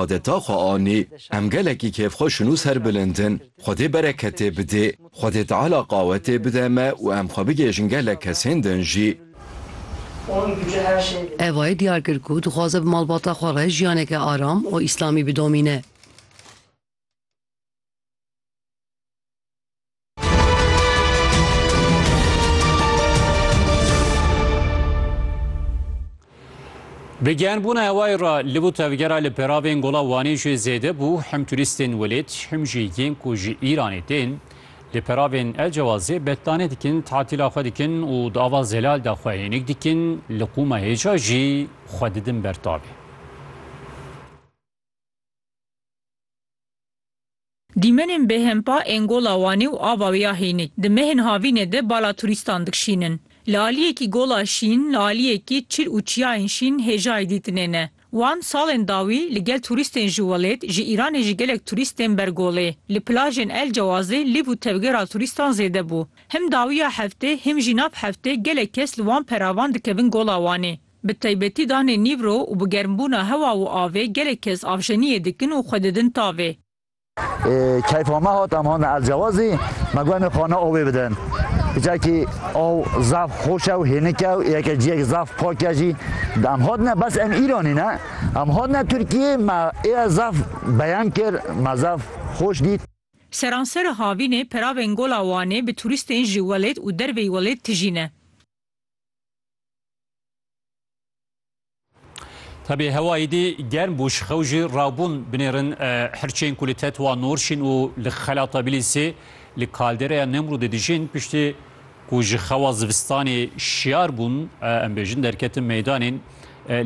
adeta xwe anî. Em gelekî kêfxweşin û serbilind in. Xwedê bereketê bidê. Xwedê Teala qawetê bide me û em xwe bigêjin gelek kesên din jî. Evayê diyar kir ku dixwaze bi malbata xwe re jiyaneke aram û îslamî bidomîne. Bi gehnbûna hewayê re li bo tevgera li peravên Gola Wanê jî zêde bû. Him turîstên welêt him jî yên ku ji Îranê tên li peravên El Cewazê betlanê dikin, tatîla xwe dikin û di ava zelal de xwe hênik dikin. Li qûma hêja jî xwe didin ber tavê. Dîmenên bêhempa ên Gola Wanê û ava wê ya Hênik di mehên havînê de bala turîstan dikşînin. Li aliyekî Gola Şîn, li aliyekî çil û çiyayên şîn hêjayî dîtinê ne. Wan salên dawî li gel turîstên ji welêt, ji Îranê jî gelek turîst tên ber golê. Li plajên El Cewazê lîv û tevgera turîstan zêde bû. Him dawiya heftê him jî nav heftê gelek kes li wan peravan dikevin Gola Wanê. Bi taybetî danê nîvro û bi germbûna hewa û avê gelek kes avjeniyê dikin û xwe didin tavê. Keyfa me hat em hatin elcewazî, me got em ê xana awê bidin. Çekî aw zaf xweş e û hênik e û yeke ciyek zaf pak e jî. Em hatine bes em Îranî ne, em hatine Tirkiyê me ê zaf beyan kir, me zaf xweş dît. Seransera havînê peravên Gola Wanê bi turîstên ji welêt û derveyî welêt tijî ne. Tabi hewayî dî germ bû ji xew jî rawbûn binêrin hirçên ku li tetwa Norşîn û li Xela Tabilisê li kaldereya Nemrûdê dijîn piştî ku ji xewa zivistanê şiyar bûn em bêjin derketin meydanên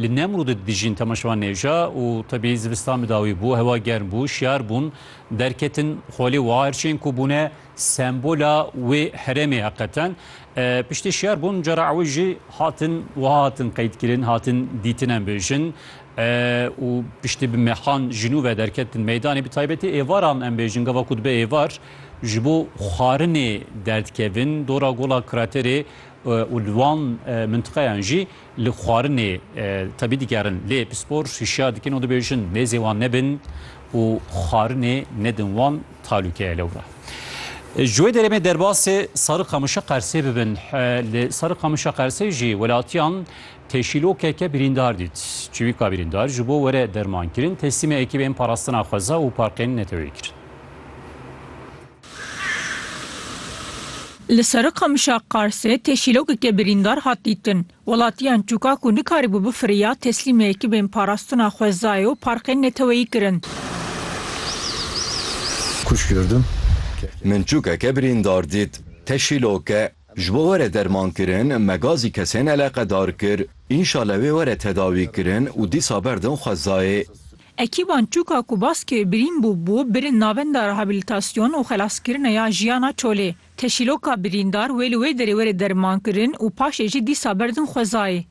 li Nemrûdê dijîn temaşevan nêja û tabi zivistan bi dawî bû hewa germ bû şiyar bûn derketin xolê wa hirçên ku bûne Sembola wê herêmê heqeten piştî şer bûn cara ew jî hatin wiha hatin qeydkirin, hatin dîtin em bêjin û piştî bi mexan ji nû ve derketin meydanê bi taybetî êvaran em bêjin gava ku dibe êvar ji bo xwarinê derdikevin dora gola kraterê û li wan mintiqeyan jî Li xwarinê tevî digerin lê pispor hişyar dikin û dibêjin nêzê wan nebin û xwarinê nedin wan talûkeye lewra. Ji wê derê me derbasê Sariqamişa Qersê bibin. Li Sariqamişa Qersê jî welatiyan teşîlokeke birîndar dît. Çivîka birîndar ji bo were dermankirin teslîmê ekîbên parastina xweza û parkên neteweyê kirin. Li Serîqamişa Qarsê tê şîlogeke birîndar hat dîtin. Welatiyan çûka ku nikarîbû bifiriya teslîmê ekibên parastina xwezayê û parkên neteweyî kirin. Min çûkeke birîndar dît. Te şîlog e. Ji bo were dermankirin me gazî kesên eleqedar kir. Înşale wê were tedawîkirin û dîsa berdin xwezayê. Ekîban Çûka ku bas kir birîn bû bû birin navenda rehabilitasyon û xelaskirina ya jiyana çolê. Teşîloka birîndar wê li wê derê were dermankirin û paşê jî dîsa berdin xwezayê.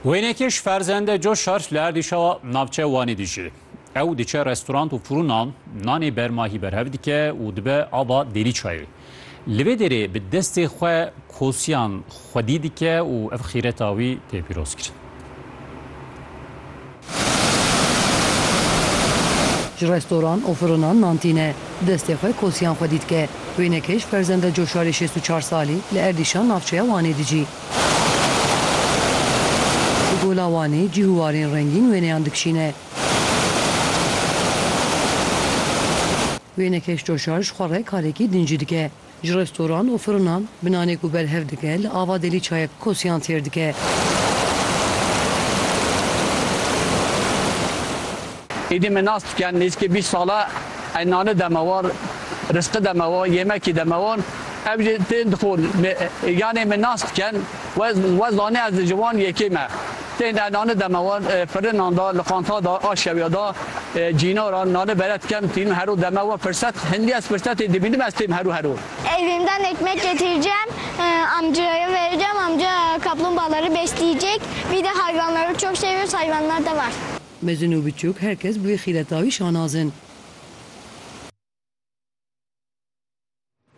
Wênekî ji ferzende Coşar li Erdîşawa navçeya Wanê dijî. Ew diçe restorant û fûrinan nanê bermahî berhev dike û dibe ava dêrî çayê. Li vê dêrê bi destê xwe kosiyan xwedî dike û ev xîreta wî tê pîrozkirin. Ji restoran û fûrinan nan tîne, destê xwe kosiyan xwedî dike. Wênekej Ferzende Coşarê şêst û çar salî li Erdîşan navçeya Wanê dicî. Di Gola Wanê cih û warên rengîn wêneyan dikişîne. Wênekeş coşar ji xwe re karekî din jî dike. Ji restoran û firinan bi nanê ku berhev dike li ava delî çayek kosiyan têr dike. Êdî me nas dikin nêzîkê bîst sal e ey nane deme wan, risqi deme wan, yêmekî deme wan. Ew jî tên dixwin. Yanê me nas dikin we zanê ez ji wan yekê me. Tên ey nane deme wan firinan de, li qanta de, a şewê de, cînaran nane bere dikin. Tînin hero deme wan firset. Hindî ez firsetê dibînim ez têm hero hero. Evîm de nekmek getircem amcaya vericem. Amca kaplumbağaları besleyecek. Bir de hayvanları çok seviyoruz. Hayvanlar da var. Mezin û biçûk her kes bi wê xîreta wî şanaz in.